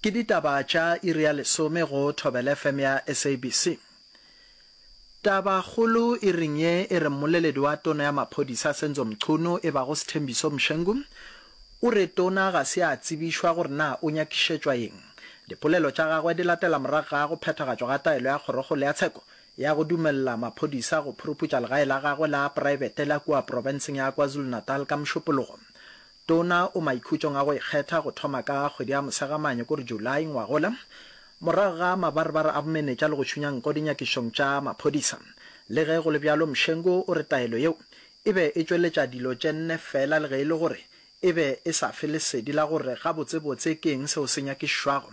Ke ditaba tša iri ya lesome go Thobela FM ya SABC. Tabakgolo iring ye e re mmoleledi wa tona ya maphodisa Senzo Mchunu e bago Sthembiso Mshengu o re tona ga se a tsebišwa gore na o nyakišetšwa eng. Dipolelo tša gagwe di latela morago ga go phethagatšwa ga taelo ya Kgorokgolo ya Tsheko ya go dumelela maphodisa go phuruputša legae la gagwe la praebete la kua profenseng ya KwaZulu-Natal ka Mošupologo. Tona o maikhutšong a go ikgetha go thoma ka kgwedi ya Mosegamane, ko re July, ngwagola, morago ga mabarebare a bomenetša le go šunya nko dinyakišong tša maphodisa. Le ge go le bjalo, Mshengu o re taelo yeo e be e tšweletša dilo tše nne feela le ge e le gore e be e sa fe lesedi la gore gabotsebotse ke eng seo se nyakišwago.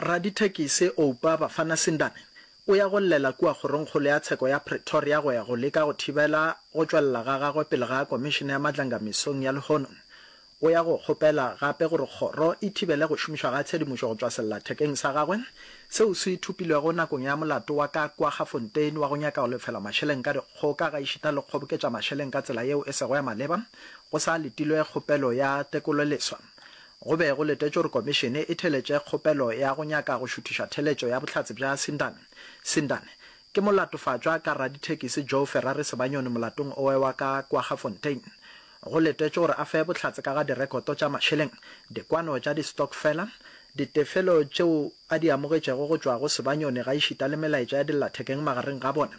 Radithekisi Oupa Bafana Sindane o ya go llela kua kgorongkgolo ya tsheko ya Pretoria go ya go leka go thibela go tšwelela ga gagwe pele ga Komišene ya Matlanga mesong ya lehono. O ya go kgopela gape gore kgoro e thibele go šomišwa ga tshedimošo go tšwa sellathekeng sa gagwe seo se thopilwego nakong ya molato wa ka Kwaggafontein wa go nyaka go lefela mašeleng ka dikgoka gaešita le go kgoboketša mašeleng ka tsela yeo e sego ya maleba go sa letilwe kgopelo ya tekololeswa Go be go letetšwe gore Komišene e theletše kgopelo ya go nyaka go šuthiša theletšo ya bohlatse bja Sindane. Sindane, Ke molatofatšwa ka radithekisi Joe Ferrari Sebanyoni molatong owe wa ka Kwaggafontein. Go letetšwe gore a fe bohlatse ka ga direkoto tša mašeleng, dikwano tša distokfela, ditefelo tšeo a di amogetšego go tšwa go Sebanyoni gaešita le melaetša ya dillathekeng magareng ga bona,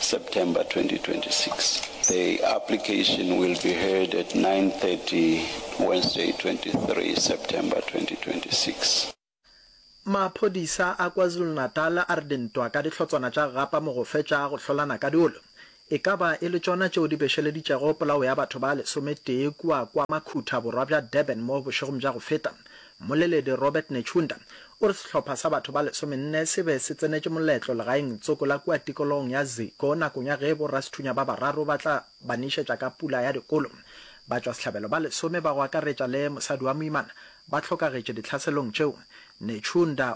September 2026. The application will be heard at 9:30 Wednesday 23 September 2026. Maphodisa a KwaZulu-Natal a re dintwa ka dihlotswana tša gapa mogofe tša go hlolana ka diolo e ka ba e le tšona tšeo di bešeleditšego polao ya batho ba lesometee kua kwa Makhutha borwa bja Durban mo bošegong bja go feta Mmoleledi Robert Netshiunda o re sehlopha sa batho ba lesomenne se be se tsenetše moletlo legaeng tsoko la kua tikologong ya Ziko nakong ya ge borasethunya ba bararo ba tla ba nišetša ka pula ya dikolo. Batšwasehlabelo ba lesome ba go akaretša le mosadi wa moimana ba hlokagetše dihlaselong tšeo. Netshiunda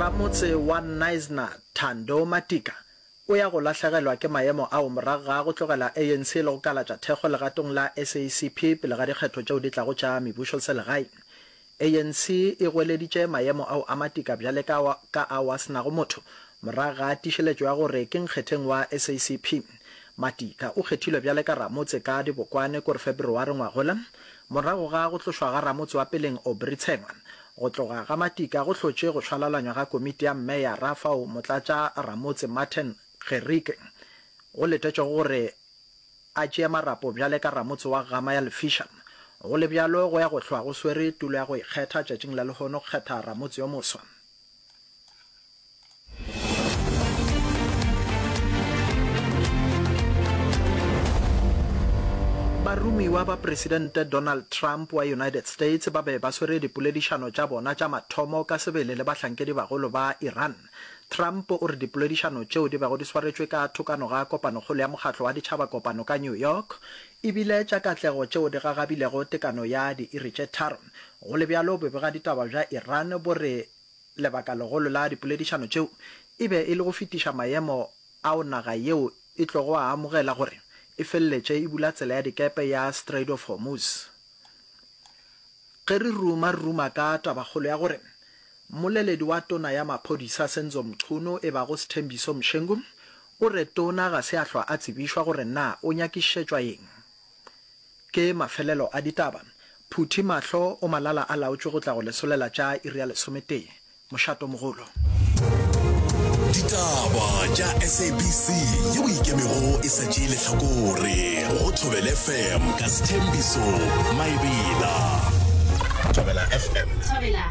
Ramotse wa Knysna, Thando Matika, o ya go lahlegelwa ke maemo ao morago ga go tlogela ANC le go kalatša thekgo legatong la SACP pele ga dikgetho tšeo di tlago tša mebušoselegae. ANC e goeleditše maemo ao a matika bjale ka ao ka ao a se nago motho morago ga tiišeletšo ya gore ke nkgetheng wa SACP. Matika o kgethilwe bjale ka ramotse ka dibokwane kore Feberware ngwagola morago ga go tlošwa ga ramotse wa peleng Aubrey Tshengwa. Go tloga ga Matika go hlotše go šwalalanywa ga komiti ya mmeyara fao motlatša ramotse Martin Gericke go letetšego gore A tšee marapo bjale ka ramotse wa Gama ya Lefiša. Go le bjalo, go ya go hlwa go swere tulo ya go ikgetha tšatšing la lehono go kgetha ramotse yo moswa. Baromiwa ba Presidente Donald Trump wa United States ba be ba swere dipoledišano tša bona tša mathomo ka sebele le bahlankedi bagolo ba Iran. Trump o re dipoledišano tšeo di bego di swaretšwe ka thokano ga kopanokgolo ya Mokgatlo wa Ditšhabakopano ka New York e bile tša katlego tšeo di gagabilego tekano ya diiri tše tharo. Go le bjalo, bobegaditaba bja Iran bo re lebaka legolo la dipoledišano tšeo e be e le go fetiša maemo ao naga yeo e tlogo a amogela gore e feleletše e bula tsela ya dikepe ya Strait of Hormuz. Ge re ruma-ruma ka tabakgolo ya gore Mmoleledi wa tona ya maphodisa Senzo Mchunu e bago Sthembiso Mshengu o re tona ga se a hlwa a tsebišwa gore na o nyakišetšwa eng. Ke mafelelo a ditaba, phuthi mahlo o malala a laotšwe go tla go lesolela tša iri ya lesometee. Mošato mogolo. Ditaba tša SABC yeo e ikemego e sa tšee lehlakore go Thobela FM ka Sethembiso Maebela. Thobela FM. Thobela.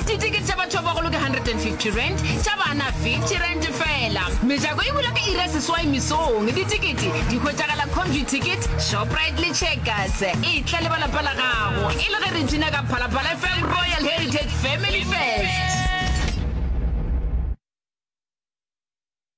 Ditikete tša batho ba bagolo ke 150 rand, tša bana 50 rand fela. Mejako e bula ka iri ya seswai mesong. Ditikete di hwetšagala Comview Ticket, Shoprite le Checkers. Etla le ba lapa la gago e le ge re bina ka Phalaphala FM Royal Heritage Family Fest.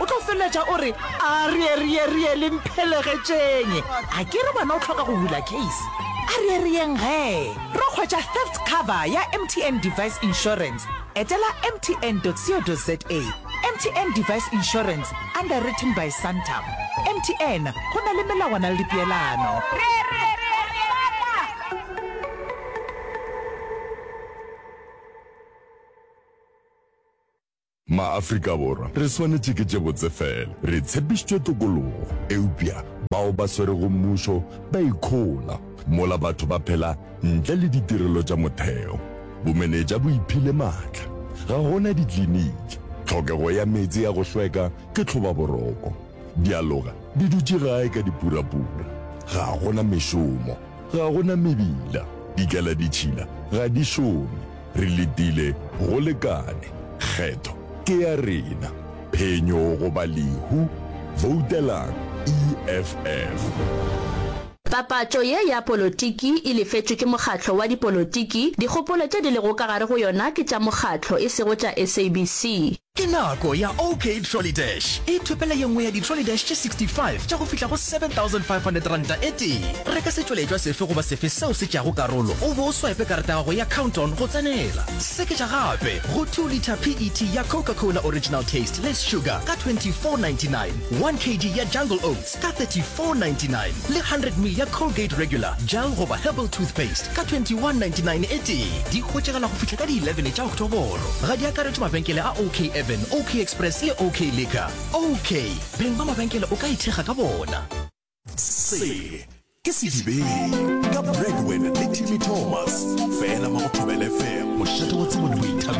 O tlo feleletša o re, A re, re ye, re ye, le mphelegetšeng. A ke re wena o hloka go bula case? A re, re yeng ge re hwetša theft cover ya MTN Device Insurance? Etela mtn.co.za. MTN Device Insurance, underwritten by Santam. MTN, go na le melawana le dipeelano. Ma-Afrika-Borwa re swanetše ke tše botse fela. Re tshepišitšwe tokologo, eupša bao ba swerego mmušo ba ikhola mola batho ba phela ntle le ditirelo tša motheo. Bomenetša bo iphile matla. Ga go na dikliniki. Tlhokego ya meetse ya go hlweka ke tlhobaboroko. Dialoga di dutše gae ka dipurapura. Ga go na mešomo. Ga go na mebila. Dikaladitšhila ga di šome. Re letile go lekane. Kgetho ke ya rena. Phenyo goba lehu, voutelang EFF. Papatšo ye ya polotiki e lefetšwe ke mokgatlo wa dipolotiki, dikgopolo tše di lego ka gare go yona ke tša mokgatlo, e sego tša SABC. Ke nako ya OK Trolley Dash. Ithopele ye nngwe ya di-trolley dash tše 65 tša go fihla go R7,500 e tee. Reka setšweletšwa sefe goba sefe seo se tšeago karolo o bo o swipe karata ya gago ya Count-On go tsenela. Seketša gape go two litre PET ya Coca-Cola Original Taste Less Sugar ka 24.99, one kg ya Jungle Oats, ka 34.99 le 100 ml ya Colgate Regular Gel goba Herbal Toothpaste ka 21.99 e tee. Di hwetšagala go fihla ka di 11 tša Oktoboro. Ga di akaretšwe mabenkele a OK Urban, OK Express le OK Liquor. OK, beng ba mabenkele o ka ithekga ka bona. Se ke Sedibeng ka Bregwin le Timmy Thomas, fela mo go Thobela FM. Mošate wa tsebo le boithabišo.